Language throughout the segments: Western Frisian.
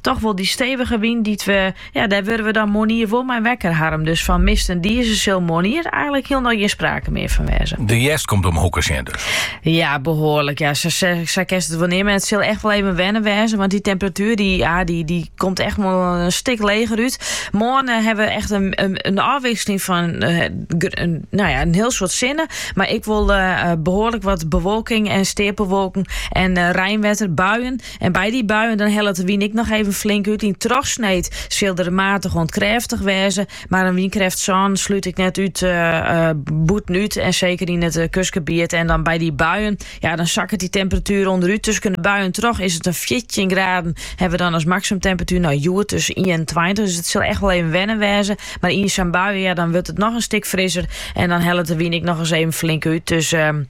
toch wol dy stevige wyn dy't we, ja, dêr wurde we dan moarnier wol mei wekker Harm. Dus fan mist en dize sil moarnier eigenlik hielendal gjin sprake mear fan wêze. De hjerst komt om 'e hoeke sjen dus. Ja, behoarlik. Ja, sa, sa, sa kinst it wol neame. Mar it sil echt wol even wennen wêze. Want dy temperatuer dy, ja, dy, dy komt echt wol in stik leger út. Moarn eh, hawwe we echt in, in, in ôfwikseling fan eh, gr- in, no ja, in hiel soad sinne. Mar ek wol eh, eh, behoarlik wat bewolking en steapelwolken en eh reinwetter, buien. En by dy buien dan hellet de wyn ek noch even flink út. Yn trochsneed sil dy matich oant krêftich wêze, mar in wynkrêft sân slút ik net út uh, eh, eh, bûtenút en seker yn it eh, kustgebiet. En dan by dy buien, ja, dan sakket dy temperatuer ûnderút. Tusken de buien troch is it in 14 graden. Hawwe we dan as maksimumtemperatuer no hjoed dus sa'n 21. Dus it sil echt wol even wennen wêze. Mar yn sa'n buien, ja, dan wurdt it noch in stik frisser. En dan hellet de wyn ek noch ris even flink út. Dus ehm,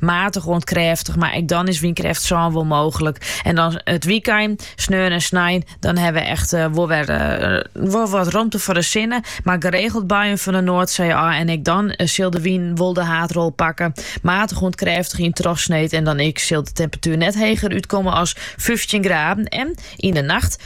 Matich oant krêftich, mar ek dan is wynkrêft sân wol mooglik. En dan it wykein, sneon en snein, dan hawwe we echt eh, wol wer eh, wat romte foar de sinne. Mar geregeld buien fan de Noardsee ôf en ek dan eh, sil de wyn wol de haadrol pakken. Matich oant krêftich yn trochsneed en dan ek sil de temperatuer net heger útkomme as 15 graden. En yn de nacht